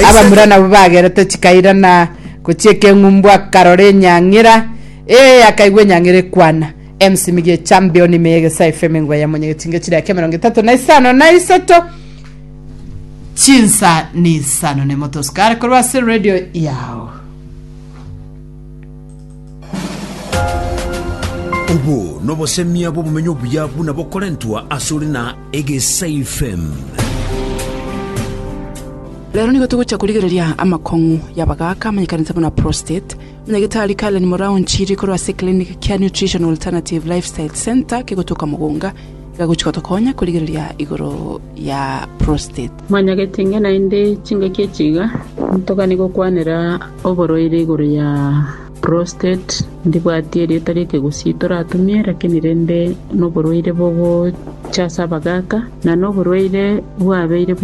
Abamura nabwo bagerete chikaira na gochia ekeng'umbu akarora enyang'era ee akaigwa enyang'era ekwana emsimiga echampioni ime y'egesaa efeme ngwa ya monye gechinga chire ake emerongo etato na isano na isato chinsa na isano nemotosikare korwa ase radio yao Obo nobosemia bw'obomenyo obuya buna bokorentwa asore na egesaifm. Rero nigo togochia korigereria amakong'u y'abagaaka amanyekanete buna prostate. Omonyagetari Karen Morao nchiri korwa ase Clinic kia Nutrition Alternative Lifestyle Centre kegotoka Mugunga, iga agochia gotokonya korigereria igoro ya prostate. Manya gete inga naende chingaki echi iga, Ntogani gokwanera oborwaire igoro ya prostate, ndibwati erieta ri'ekegusii toratumie, lakini rende noborwaire bogochasa abagaaka, na noborwaire bwabeire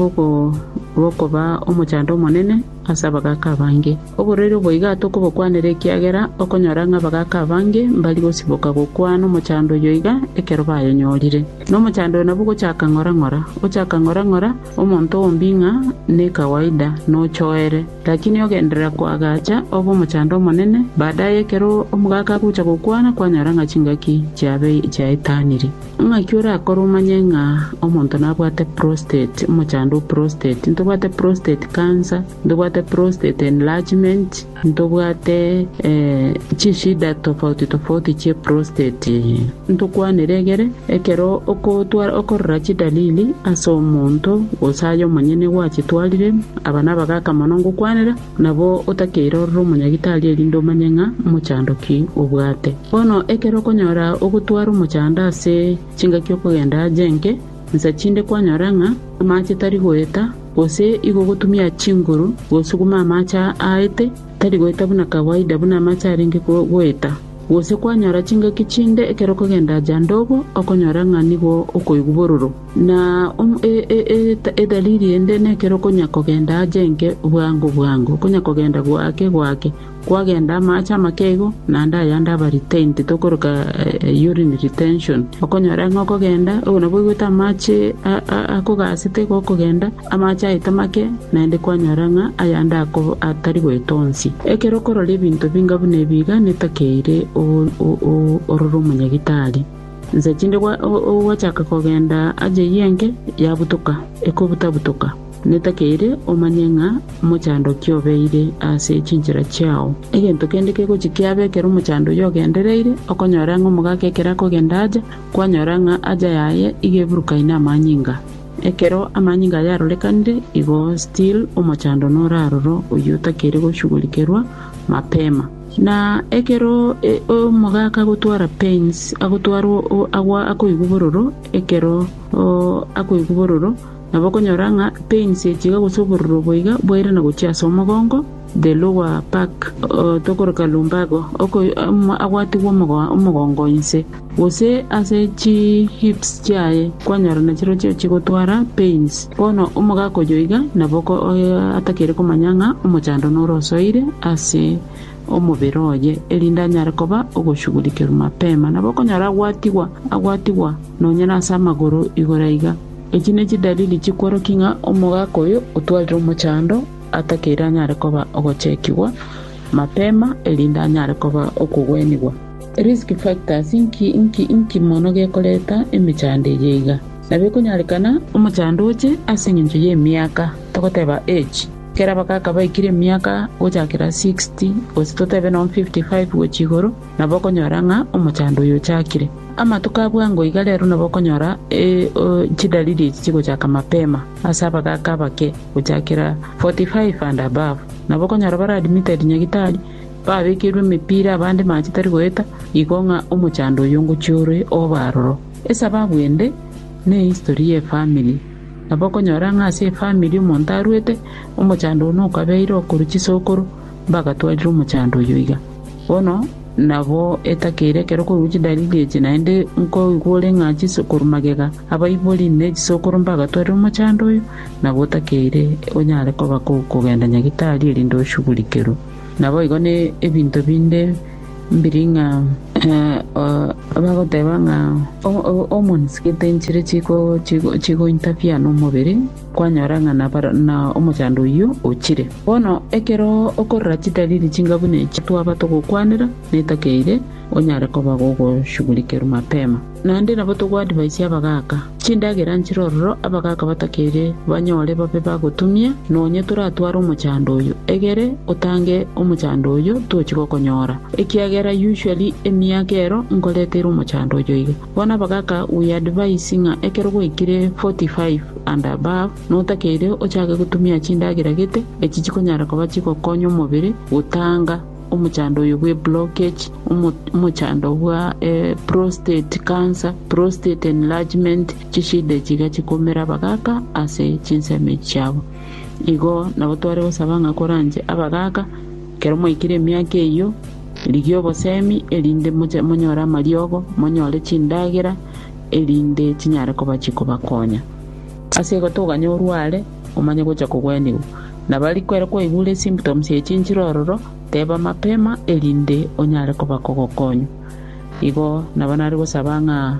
bokoba omochando omonene ase abagaaka abange. Oborwaire obo iga tokobokwanera ekiagera okonyora ng'a abagaaka abange mbari gosiboka gokwana omochando oyo iga ekero bayenyorire. Nomochando oyo nabwo gochaka ng'ora ng'ora, gochaka ng'ora ng'ora, omonto ombie ng'a nekawaida nochoere, lakini ogenderera koagacha obe omochando omonene, baadaye ekero omogaka agocha gokwana kwanyora ng'a chingaki chiaetaniri. Ng'aki orakore omanye ng'a omonto nabwate prostate, omochando o prostate, ntobwate prostate cancer, ntobwate prostate enlargement, Ntobwate chinshida tofauti tofauti chie prostate. Ntokwanere egere ekero okorora chidalili ase omonto gose aye omonyene gwachitwarire, aba nabagaaka mono ngokwanera nabo otakeire orore omonyagitari erinde omanye ng'a mochando ki obwate. Bono ekero okonyora ogotwara omochando ase chingaki okogenda aje enke, Insa chinde kwanyora ng'a amaache tari goeta, gose igo gotumia chinguru gosuguma amaache aete, tari goeta buna kawaida buna amaache arenge goeta. Gose kwanyora chingaki chinde ekero okogenda aja ndobo okonyora ng'a nigo okoigwa bororo. Na edalili ende nekero okonya kogenda aja enke bwango bwango, okonya kogenda gwake gwake. Kwagenda amaache amakeigo, naende ayande aba retained, tokoroka urine retention. Okonyora ng'a okogenda, oyo nabwo oigwete amaache akogaasete iga okogenda, amaache aete make, naende kwanyora ng'a ayande atari goeta onsi. Ekero okorora ebinto binga buna ebi iga netakeire orore omonyagitari. Nsa chinde gwachaka kogenda ajaiyie enke, yabutoka, ekobuta-butoka. Netakeire omanye ng'a omochandoki obeire ase chinchera chiao. Egento kende kegochia kiabe ekero omochando oyio ogendereire, okonyora ng'a omogaka ekero akogenda aja, kwanyora ng'a haja yaye iga eburukaine amanyinga. Ekero amanyinga ayio arorekanire, igo still omochando nore aroro oyio otakeire goshugulikerwa mapema. Na ekero omogaka agotwara pains, agotwara akoigwa bororo ekero akoigwa bororo, Nabo okonyora ng'a pains echiga gose obororo obo iga bwairana gochia ase omogongo, the lower back, tokoroka lumbago, oko agwatigwe omogongo inse, gose ase chi hips chiaye kwanyora nachirochio chigotwara pains. Bono omogaka oyo iga nabo atakeire komanya ng'a omochando nore osoire ase omobere oye erinde anyare koba ogoshugurikerwa mapema. Nabo okonyora agwatigwa agwatigwa nonya nase amagoro igoro iga. Echi ne chidalili chikworokia ng'a omogaka oyo otwarire omochando atakeire anyare koba ogochekigwa mapema erinde anyare koba okogwenigwa. Risk factors inki mono gekoreta emechando eye iga? Nabo ekonyarekana omochando oche ase eng'encho y'emiaka, togoteba age. Kera abagaka baikire emiaka gochakera sixty, gose totebe nonya fifty five gochia igoro. Nabo okonyora ng'a omochando oyo ochakire. Amatuko a bwango iga rero nabo okonyora chidalili echi chigochaka mapema ase abagaaka abake gochakera 45 and above. Nabo okonyora bare admitted nyagitari, babekeirwe emepira abande maache tari goeta, igo ng'a omochando oyo ngochia ore obe aroro. Esababu ende ne history ye family. Nabo okonyora ng'a ase efamily omonto arwete, omochando one okabeire okorwa chisokoro. mbagatwarire omochando oyio iga. Bono nabo etakeire ekero okoigwa chidalili echi, naende nkoigwa ore ng'a chinsa korwa magega, abaibori ne chisokoro mbagatwarire omochando oyo, nabo otakeire onyare koba kogenda nyagetari erinde oshugurikerwe. Naboigo ne ebinto binde mbiri ng'a bagoteba ng'a omonsigete enchire chigointafiana omobere. Kwanyora ng'a nabare na omochando oyio ochire. Bono ekero okorora chidaliri chinga buna echi twaba togokwanera, netakeire onyare koba gogoshugurikerwa mapema. Naende nabo togoadvicia abagaaka, chindagera nchire ororo abagaaka batakeire banyore babe bagotumia, nonye toratware omochando oyo, egere otange omochando oyo tochi gokonyora, ekiagera usually emiaka ero nkoreteire omochando oyo iga. Bono bagaka we advice ng'a ekero gwaikire 45 and above notakeire ochake gotumia chindagera gete echi chikonyara koba chigokonya omobere gotanga omochando oyo bwe blockage, omochando bwa prostate cancer, prostate enlargement, chishida echi iga chikumera abagaka ase chinsemo echi chiabo. Igo nabo tware gosaba ng'a koranche abagaka Ekero mwaikire emiaka eyio, rigia obosemi, erinde monyore amariogo, monyore chindagera, erinde chinyare koba chikobakonya. Ase egotoganya orware, omanye gocha kogwenigwa. Nabo ariko ere kwaigure esymptoms ya echinchire ororo, teba mapema erinde onyare koba kogokonywa. Igo nabo nare gosaba ng'a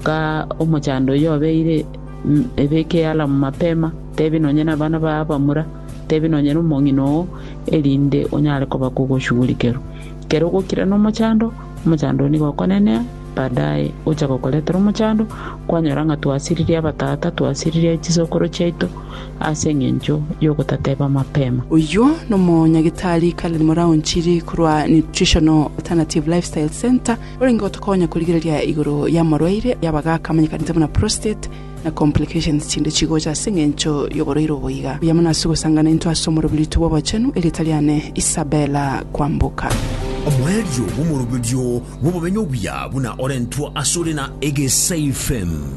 ka omochando oyio obeire, ebeke alarm mapema, tebia nonye nabana babo abamura, Tebia nonya nomong'ina oo, erinde onyare koba kogoshugurikerwa. Kere ogokira nomochando, omochando oo nigo okonenea, baadaye ocha gokoretera omochando, kwanyora ng'a twasiririe abatata, twasiririe chisokoro chiaito ase eng'encho yogotateba mapema. Oyio nomonyagitari Karen Moraonchiri korwa Nutritional Alternative Lifestyle Centre, orenge gotokonya korigereria igoro y'amorwaire y'abagaka amanyekanete buna prostate, na complications chinde chigocha ase engencho yoboroiro obo iga. Buya mono ase ogosangana intwe ase omoroberitwe bw'obochenu, erieta riane Isabella Kwamboka. Omoerio bw'omoroberio bw'obomenyo obuya buna orentwa asore na Egesaifem.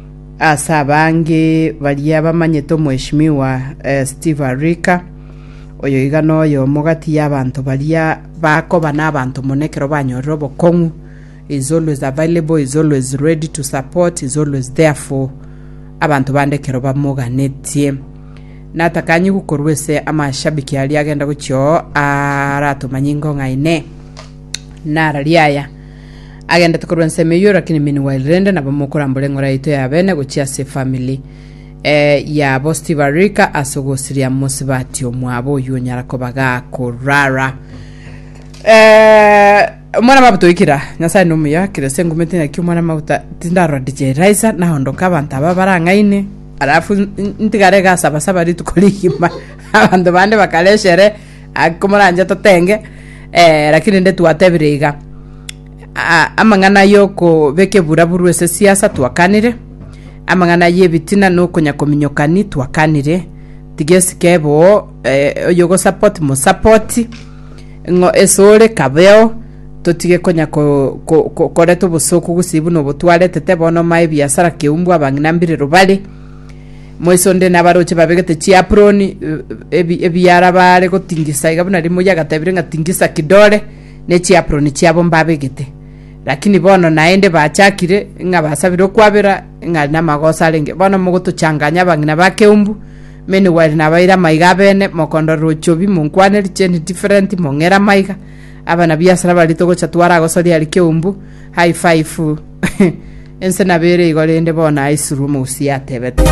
Ase abange baria bamanyete Omweshimiwa Steve Arika, oyo iga noyomo gati y'abanto baria bakoba n'abanto mono ekero banyorire obokong'u, he is always available, he is always ready to support, he is always there for abanto bande ekero bamoganetie. Natakanyigwe korwa ase amashabiki aria agenda gochia oo aratomanye ingo ng'aine. Nararia aya agendete korwa ensemo eyio rakini meanwhile rende nabo mokorambora eng'ora yaito y'abene gochia ase efamili eh, yabo stibarika ase ogosiria mosibati omwabo oyio onyara koba gakorara Eh, omwana mabuta oikira nyasaye ni omuya kira ase engumi tinaki omwana mabuta tindarora dj raisa naondoka abanto aba barang'aini arafu n- n- ntigare gasabasaba rituko rigima abanto bande bakara eshere Aa, komoranche totenge, eh, lakini inde twatebire iga. Aa, amang'ana y'okobeka eburaburu ase siasa twakanire, amang'ana y'ebitina na okonyakominyokani twakanire, tigesike boo, eh, oyo ogosupport mosapoti, ng'o esore kabeo, totige konya ko- ko- ko- koreta obosoku gose buna obotwaretete bono mae ebiasara keumbwa abang'ina mbirero bare, Moise onde na abaroche babe gete chiaproni eh, ebi- ebiara baare gotingisa iga buna rimo yagatebire ng'a tingisa kidore ne chiaproni chiabo mbabegete lakini bono naende bachakire ng'a basabire okwabera ng'a ari namagoso arenge bono mogotochanganya abang'ina ba keumbu many while nabaire amaiga abene mokondorera ochobi monkwane richeni different mong'era amaiga abana biasara bari togocha twaragosoria ari keumbu high five ense nabere igo rende bono aisirwe omogusi yatebete